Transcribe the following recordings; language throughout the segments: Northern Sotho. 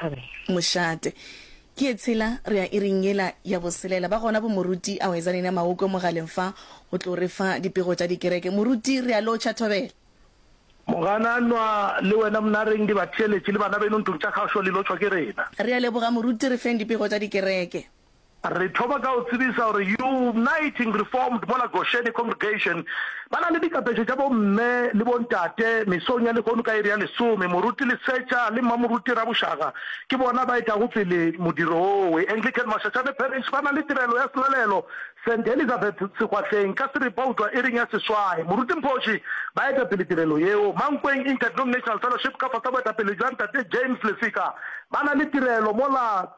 Amen. Mošate. Ke ye tshela, re ya iring yela ya boselela. Ba gona bo Moruti, a hweza nena Maoko mogaleng fa, o tlo re fa dipego tša dikereke. Moruti, re ya lotšha thobela. Mogananwa, Le wena Mnareng, dibatheeletši le bana beno ntlong tša kgašo le lotšhwa ke rena. Re ya leboga Moruti, re feng dipego tša dikereke. Re thoma ka go tsebiša gore Uniting Reformed mola Goshene Congregation ba na le dikapeše tša bomme le bontate mesong ya lehono ka iri ya lesome. Moruti Lesetša le Mmamoruti Rabošaga ke bona ba etago pele modiro wowe. Anglican Mashashane Parish ba na le tirelo ya selalelo Saint Elizabeth Segwahleng ka Seripautwa iring ya seswai. Moruti Mphoši ba eta pele tirelo yeo. Mankweng Interdenominational Fellowship ka fasa boetapele bja Ntate James Lesika ba na le tirelo mola.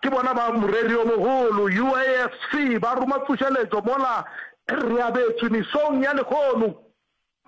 Ke bona ba moreri o mogolo. UAFC ba roma tsošeletšo mola re abetšwe mesong ya lehono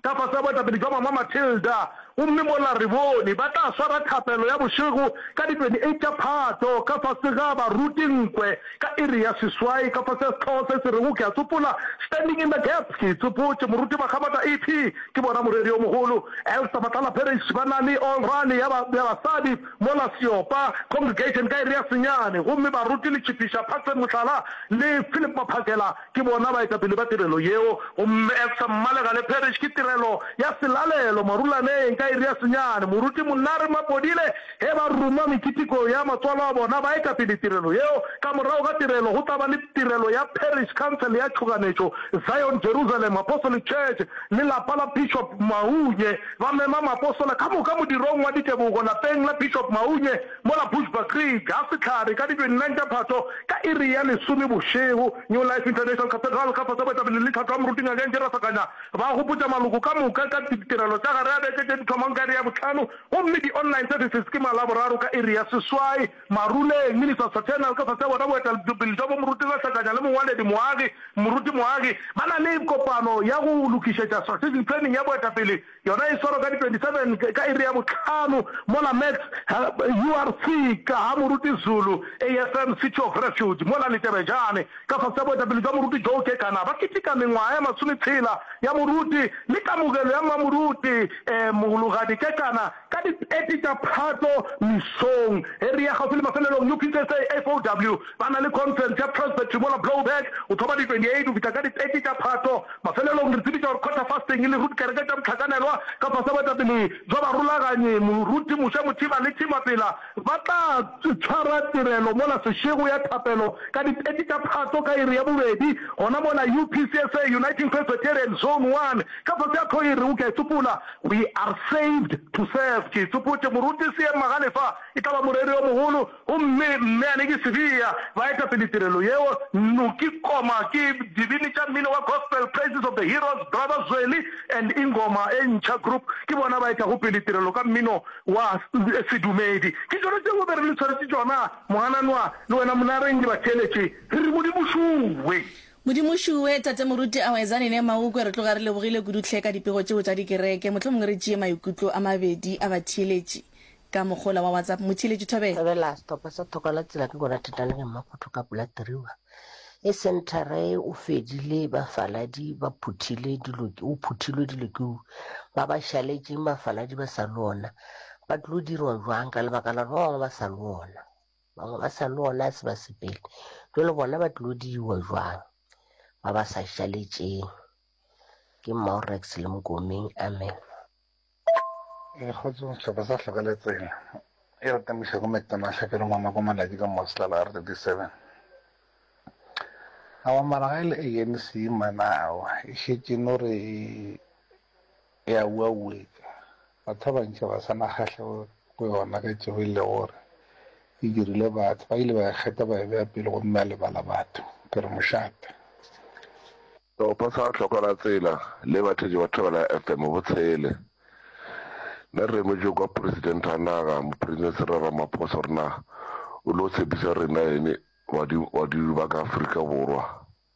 ka fase ga boetapele bja Mama Matilda gomme mola re bone ba tla swara thapelo ya bošego ka di 28 tša Phato ka fase ga baruti nkwe ka iri ya seswai ka fase ga sehlooho se se rego Ke a tsopola Standing in the Gap Ke tsopotše moruti Makgabata EP Ke bona moreri o mogolo Elster Matlala Parrish ba na le All Rally ya basadi Mola Seopa, Congregation, ka iri ya senyane, gomme baruti le tšhipiša Patsy Mohlala le Phillip Maphakela ke bona baetapele ba tirelo yeo. Gomme Efsa Mmalega le Parish ke tirelo ya selalelo marulaneng ka iri ya senyane. Moruti Monare Mapodile ge ba ruma mekitikong ya matswalo a bona baetapele tirelo yeo. Ka morago ga tirelo go tla ba le tirelo ya Parish Council ya tšhoganetšo, Zion Jerusalem Apostolic Church le lapa la Bishop Maunye. Ba mema maapostola ka moka modirong wa ditebogo lapeng la Bishop Maunye mola Bushbuckridge ga sehlare ka di 29 tša Phatho ka iri ya lesome bošego. New Life International Cathedral ka fase baetapele le tlhatlho ya moruti Ngakeng Jerasa Kanya ba gopotša maloko ka moka ka ditirelo tša gare ga beke tše di thomang ka iri ya bohlano gomme di-online services ke malaboraro ka iri ya seswai. Maruleng, Ministers Fraternal, ka fase ga bona boetelpele jwa bomoruti go hlakanya le mongwaledi moagi, moruti moagi, ba na le kopano ya go lokišetša strategic planning ya boetapele, yona e swarwa ka di 27 ka iri ya bohlano mola Max ha URC ka ga moruti Zulu, AFM City of Refuge mola Letebejane, ka fase ga boetapele jwa moruti Joe Kekana, ba keteka mengwaga ya masometshela ya moruti le kamogelo ya mmamoruti Mohulogadi Kekana. Ka di 30 tša Phatlo mesong e re ya kgauswi le mafelelong, UPSA FOW ba na le conference ya Transfer Trimola Blowback go thoma di 28 go fihla ka di 30 tša Phatlo. Mafelelong re tsebiša gore Quarter Fasting le Root Kereke tša Bohlakanelwa ka fase ga boetapele bja barulaganyi, Moruti Moshe Mothiba le Tim Mapela ba tla tshwara tirelo mola sešego ya thapelo ka di 30 tša Phatlo ka iri ya bobedi gona mola UPSA Uniting Presbyterian Zone One ka fase ga tlhogo e re O Ke a e Sopola. We are saved to serve. Ke itsopotše, Moruti Seem Magalefa e tla ba moreri yo mogolo, gomme Mme Aneki Sibiya ba etapele tirelo yeo, Nnoki Koma ke dibini tša mmino wa Gospel, Praises of the Heroes, Brother Zweli and Ingoma e Ntšha Group ke bona ba etlago pele tirelo ka mmino wa sedumedi. Ke tšona tšeo be re le tshwaretše tšona, Mogananwa le wena Monareng le batheeletše, re re Modimo šuwe. Modimo šuwe, Tate Moruti Awezane ne Maukwe re tloga re lebogile kudu tlhe ka dipego tšeo tša dikereke. Mohlomongwe re tšee maikutlo a mabedi a batheeletši ka mokgola wa WhatsApp. Motheeletši Thobela. Thobela, Sehlopha sa Thoko la Tsela ke gona Thetalegeng mo go toka Pula Tiriwa. E Centre o fedile bafaladi ba phuthile dilo ke o phuthilwe dilo ke u ba ba šaletšeng bafaladi ba sa le ona ba tlo dirwa jwang ka lebaka la ba bangwe ba sa le ona. Bangwe ba sa no ona se ba sepele. Jwale bona ba tlilo diwa jwang? Ba ba sa šaletšeng. Ke Maurex le Mokomeng. Amen. E kgotso sehlopha sa hloka le tsela e re temoša go metona hlapelo mama go malatši ka mosla la r37 awa mara ga e le anc manao e šetše no re E a uauetša. Bathabantši ga ba sa na kgahlego go yona ka tšeo e lego gore e dirile batho. Ba ile ba e kgeta ba e bea pele gomme ba lebala batho. Ke re mošate. O posa ga hloko la tsela le bathetše batho ba la FM botshele. Na re emetše kwa President wa naga, Mopresidente Cyril Ramaphosa gore na o lo tshepiša rena eng badimo ba ka Afrika Borwa.